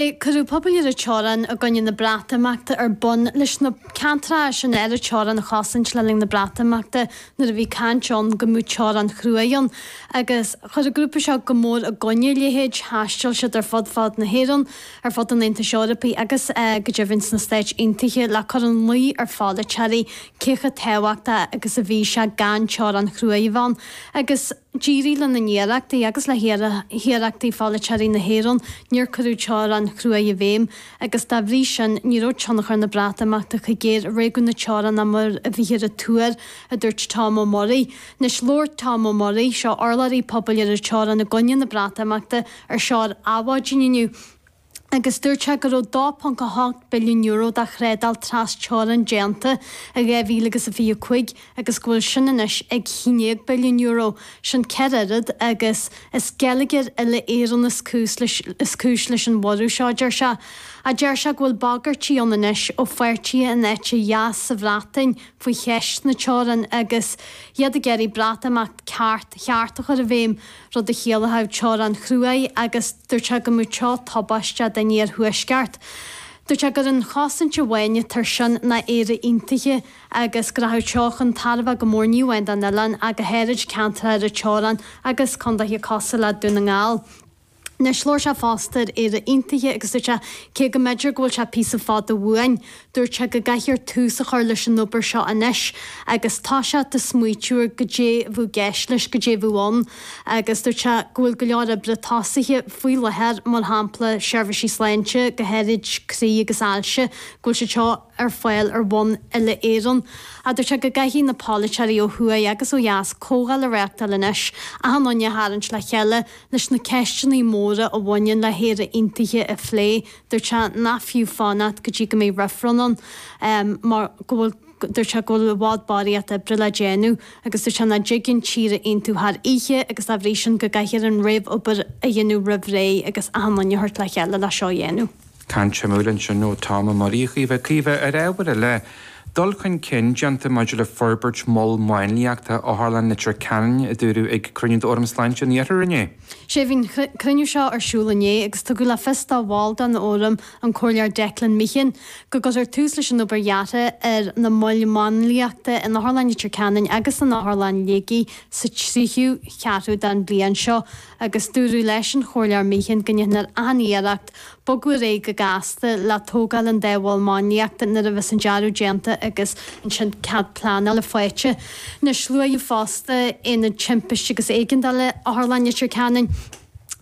Cuireadh Pobal ar an Teorainn i gcoinne na Breatimeachta ar bun leis na ceantracha sin ar an teorainn a chosaint le linn na Breatimeachta nuair a bhí caint ann go mbeadh teorainn chrua ann agus chuir an grúpa seo go mór i gcoinne a leithéid. Thaistil siad ar fud fad na hÉireann, ar fud an Aontais Eorpaigh agus go deimhin sna Stáit Aontaithe le cur in luí ar pholaiteoirí cé chomh tábhachtach agus a bhí sé gan teorainn chrua a bheith ann agus D'éirigh lena n-iarrachtaí agus le hiarrachtaí pholaiteoirí na hÉireann, níor cuireadh teorainn chrua i bhfeidhm, agus dá bhrí sin ní raibh tionchar na Breatimeachta chomh géar ar réigiún na teorann is mar a bhíthear ag tuar, a dúirt Tom Murray. Anois labhair Tom Murray, seo urlabhraí pobail ar an teorainn i gcoinne na Breatimeachta, ar Adhmhaidin inniu. agus dúirt sé go raibh €2.8 billiún de thrádáil tras-teorann déanta i 2000 agus a fiche a cúig agus go bhfuil sin anois ag cúig déag billiún euro, sin ceithre oiread agus Is geilleagair uile-Éireann is cúis leis an bhorradh seo, a deir sé. A deir sé go bhfuil bagairtí ann anois ó pháirtithe an eite dheis sa Bhreatain faoi cheist na teorann agus iad ag iarraidh Breatimeacht cheart a chur i bhfeidhm. rud a chiallódh teorainn chrua agus dúirt sé go mbeadh seo tubaisteach don iarthuaisceart. Dúirt sé gurb é an chosaint amháin air sin ná Éire Aontaithe agus go rachadh seo chun tairbhe go mór ní amháin don oileán ach go háirid ceantair ar an teorainn agus contaetha cosúil le Dún na nGall. Anois labhair sé fosta ar Éire Aontaithe agus dúirt sé cé go mb'fhéidir go bhfuil sé píosa fada uainn, Dúirt sé go gcaithfear tús a chur leis an obair seo anois agus tosú ag smaoiteamh ar goidé a bheadh i gceist leis goidé a bheadh ann agus dúirt sé go bhfuil go leor oibre tosaithe faoi láthair, mar shampla seirbhísí sláinte, go háirid croí agus ailse, go bhfuil siad seo ar fáil ar bhonn uile-Éireann. Dúirt sé go gcaithfidh na polaiteoirí ó thuaidh agus ó dheas comhdháil a reachtáil anois achan duine a tharraingt le chéile leis na ceisteanna móra a bhaineann le hÉire Aontaithe a phlé. Dúirt sé nach fiú fanacht go dtí go mbeidh reifreann ann mar go bhfuil, dúirt sé, go bhfuil i bhfad barraíocht oibre le déanamh agus dúirt sé nach dtig an tír a aontú thar oíche agus dá bhrí sin go gcaithfear an réamhobair a dhéanamh roimh ré agus achan duine a thabhairt le chéile le seo a dhéanamh. Caint shuimiúil ansin ó Tom Murray, a Chaoimhe. Caoimhe, ar ábhar eile, dul chun cinn déanta maidir le forbairt mol máinliachta Otharlann Leitir Ceanainn, a dúradh ag cruinniú d'Fhóram Sláinte an Iarthair inné. Is ea. Bhí an cruinniú seo ar siúl inné agus tugadh le fios do bhall den Fhóram, an Comhairleoir Declan Meehan, go gcuirfear tús leis an obair dheartha ar na moil mháinliachta in Otharlann Leitir Ceanainn agus in Otharlann Shligigh sa tríú ceathrú den bhliain seo agus dúradh leis an Chomhairleoir Meehan go ndéanfar achan iarracht Bogadh ar aghaidh go gasta le tógáil an dá mhol máinliachta nuair a bhí an dearadh déanta agus ansin cead pleanála faighte. Anois, luaíodh fosta Aonad Timpiste agus Éigeandála Otharlann Leitir Ceanainn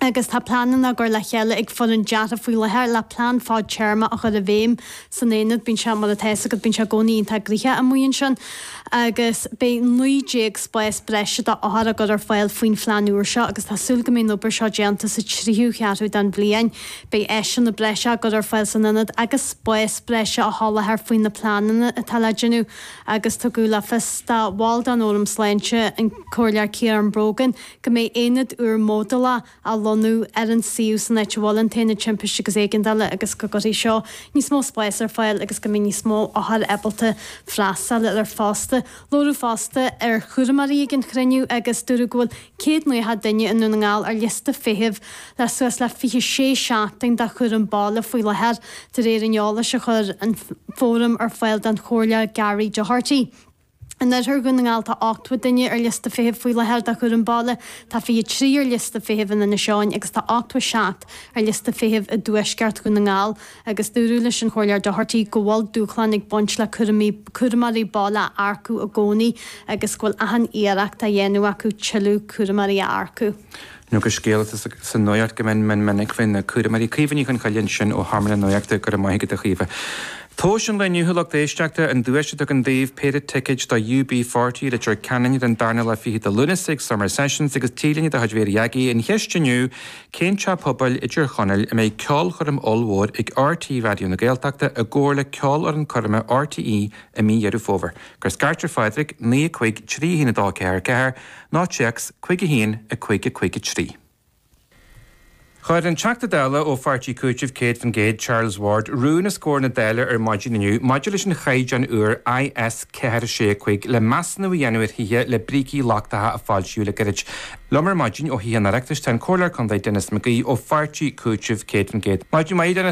agus tá pleananna á gcur le chéile ag foireann deartha faoi láthair le plean fad-téarma a chur i bhfeidhm. san aonad, bíonn sé mar atá a fhios agat, bíonn sé i gcónaí iontach gnoitheach amuigh ansin agus beidh naoi déag spás breise d'othair á chur ar fáil faoin phlean úr seo agus tá súil go mbeidh an obair seo déanta sa tríú cheathrú den bhliain. Beidh áiseanna breise á gcur ar fáil san aonad agus spás breise á sholáthar faoi na pleananna atá le déanamh agus tugadh le fios do bhall den Fhóram Sláinte, an Comhairleoir Kieran Brogan, go mbeidh aonad úr módúlach, á lonnú ar an suíomh san áit a bhfuil an tAonad Timpiste agus Éigeandála agus go gcuirfidh seo níos mó spáis ar fáil agus go mbeidh níos mó othar ábalta freastal ar fosta. Labhradh fosta ar chúramóirí ag an chruinniú agus dúradh go bhfuil 100 Naocha duine i nDún na nGall ar liosta feithimh le suas le 26 seachtain do chúram baile faoi láthair, de réir an eolais a chuir an Fóram ar fáil don Chomhairleoir Gary Doherty. In oirthear Dhún na nGall tá ochtó duine ar liosta feithimh faoi láthair do chúram baile, tá 23 ar liosta feithimh in Inis Eoghain agus tá 87 ar liosta feithimh i dtuaisceart Dhún na nGall agus dúradh leis an Chomhairleoir Doherty go bhfuil dúshláin ag baint le cúram cúramóirí baile a earcú i gcónaí agus go bhfuil achan iarracht á dhéanamh acu tuilleadh cúramóirí a earcú. Anois scéal atá sa nuaíocht go mion minic faoi na cúramóirí. Caoimhe Ní Chonghaile ansin ó sheomra na Nuaíochta, go raibh maith agat a Chaoimhe. Tomhas an lae inniu a lucht éisteachta, an duais Tuig againn daoibh péire ticéid do UB40 i Leitir Ceanainn ar an darna lá fichead de Lúnasa ag Summer Sessions agus T-léine de chuid Hairy Baby an cheist inniu, cén teach pobail i dTír Chonaill a mbeidh ceolchoirm ollmhór ag RT Raidió na Gaeltachta i gcomhar le ceolfhoireann coirme RTÉ i mí Dheireadh Fómhair? Cuir scairt ar Phádraig, 9 5 3 1 2 4 4. Nó téacs, cúig a haon, a cúig, a cúig a trí. Chuir an Teachta Dála ó Pháirtí Cúitimh 100% Charles Ward rún os comhair na Dála ar maidin inniu maidir leis an chaighdeán úr IS 4 6 5 le measúnú a dhéanamh ar thithe le brící lochtacha a foilsíodh le gairid. Liom ar maidin ó Thithe an Oireachtais tá an Comhairleoir Contae Denis McGee ó Pháirtí Cúitimh 100%. Maidin mhaith, a Denis.